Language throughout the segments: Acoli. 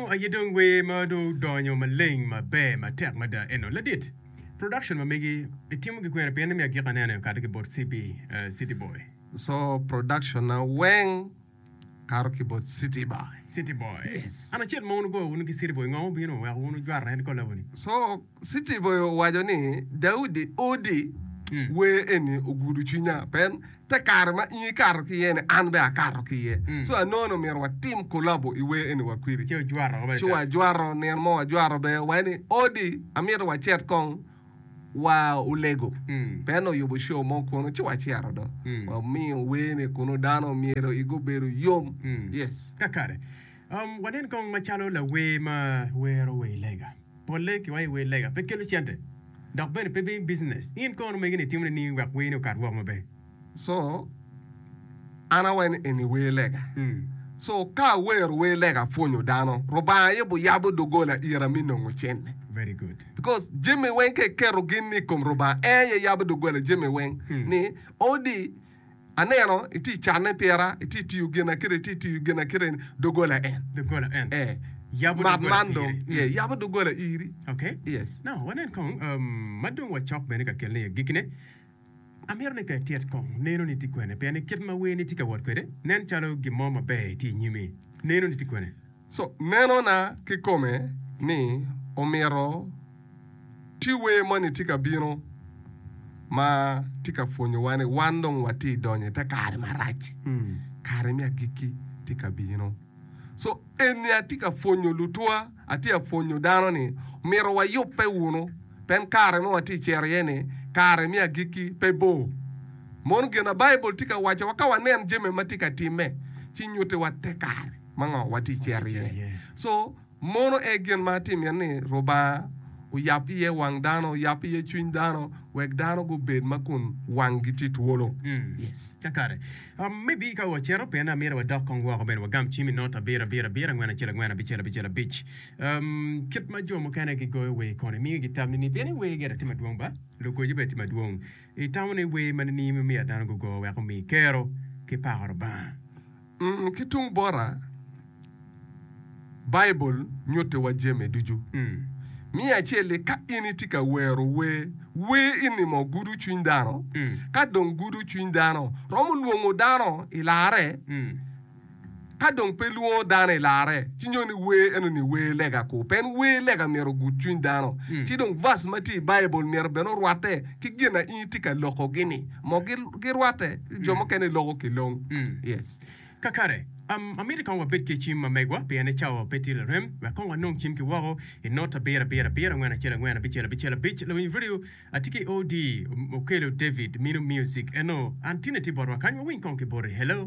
Ango aye dong wer ma dong odonyo maleng maber matek mada eno ladit? Production ma megi itimo gi kwene pien imiya gik aneno i okato ki bot CB, uh, City Boy. So production na weng kato ki bot City Boy. City Boy. Yes. An acel ma wun wugoyo wunu ki City Boy ngo mubino weko wun wujwara en kola wuni? So Citiboyo owaco ni, Daudi odi wer eni ogudo cwinya. Pien te kare ma in ikato ki iye-ni, an bene akato ki iye. Ci wanono myero watim kolabo i wer eni wa kwiri. Ci wajwato, nino mo wajwato bene wa ni, Odi, amito wacit kong wa olego. Pien oyubo show mo kunu ci wacito do. Wamiyo wer-ni kunu dano myero igi obedo yom. Yes. Kakare. Wanen kong macalo lawer ma wero wer lega. Polle ki wa i wer lega pe kelo cente dok bene pe bim business. In kono mege ni itimone ni wek wer ni okat woko maber. So an awaco eni wer lega. So ka awero wer lega apwonyo dano. Rubanga aye buyabo dogola ira me nongo cente. Very good. Because jami weng ka iketo gin ni i kom Rubanga en aye yabo dogola jami weng ni odi. Aneno itye i canne pira, itye i tiyo ginakite, itye i tiyo ginakite ni doggola en. Doggola en. Eh. Yabo Mat doggola man dong, iri. yeah, yabo doggola iri. Oke. Yes. Now, wanen kong, um, ma dong wacok bene ka kelone i agikkine. Amito ni ka ityet kong, neno ni tye kwene, pien ni kit ma werni tye ka wot kwede, nen calo gin mo maber tye i nyimi. Neno ni tye kwene. So, meno na kikome ni omito ti wer moni tye ka bino ma tye ka pwonyowa ni wan dong watye i donyo i te kare marac. Kare me agikki tye ka bino. So, eni atye ka pwonyo lutwa, atye ka pwonyo dano ni omyero wayubbe wunu, pien kare ma watye cito iye ni kare me agikki pe bor. Mono gin ma Baibul tye ka wacowa ka wanen jami ma tye ka timme ci nyutiwa te kare. ma ngo wa tye cito iye so mono e gin ma atye miti ni rubanga oyab iye wang dano oyab iye cwiny dano wek dano gu bed ma kun wang gi tye twolo yes. Kakare. Um, me bi ka wa cito, pien amyero wa dok kong woko bene wa gam cim i not abiro abiro abiro, angwen acel angwen, abicel abicel abic. Um, kit ma jo mukene gi goyo wer kono imiyo gi tam nini? Pien iwer gire tye madwong ba? Lugoco bene tye madwong. I tamo ni wer ma nini me miyo dano gu go wek omi kero ki pako Rubanga? Ki tung bota, Baibul nyutiwa jami ducu. Miya acel-li, Ka in itye ka wero wer, wer i nimo gudo cwiny dano. Ka dong gudo cwiny dano, romo lwongo dano i larre. Ka dong pe lwongo dano i larre, ci nyo ni wer eno-ni wer lega kur. Pien wer lega myero ogud cwiny dano. Ci dong bac ma tye i Baibul myero bene orwatte ki gin ma in itye ka lokogi-ni. girwatte jo mukene loko ki long. Yes. Kakare, amiti kong wabed ki cim ma megwa, pien ni cawa pe tye larem wek kong wanong cim ki woko. I not abiro abiro abiro angwen acel angwen abicel abicel abic, lawiny redio a tye ki OD okelo David mino music eno, an tine tye botwa kany wawiny kong ki boti. Hello.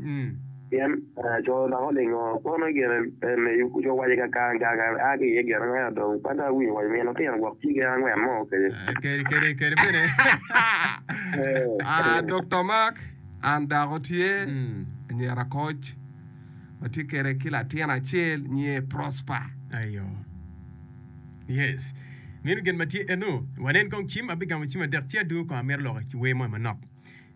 Ii. Pien co dok olingo kono gire en i yubu co waci kakang kang kan a ki iye gire ango ento dong kan a winyo waci mino tino gwok ci gire angwen mo kede. Kede kede kede bene a Dokta Mark an dako tye anyira koc watye kede ki latin acel nyiye Prosper. Ayo. Yes. Mino gin matye eno. Wanen kong cim abigamo cim adek ci adungu kong amito loko wer mo i manok.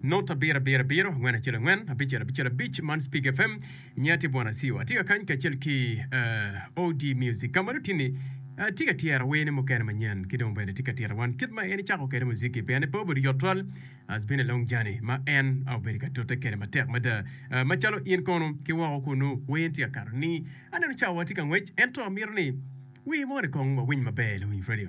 Not abirabira abiro, angwen acel angwen, abicel abicel abic man Speak FM. Nyinga tye Bwana Siwa. Atye ka kany kacel ki uh, OD Music ka ma dong tini uh, tye ka tyera werne mukene manyen ki dong bene tye ka tira wan kit ma en ecako kwede muziki pien pe obedo yot twal. Has been a long journey ma en uh, obedo ka tute kwede matek mada. Uh, macalo in kono ki woko kunu wer tye ka kato ni aneno cawa tye ka ngwec ento amito ni wer moni kong wawiny maber luwiny radio.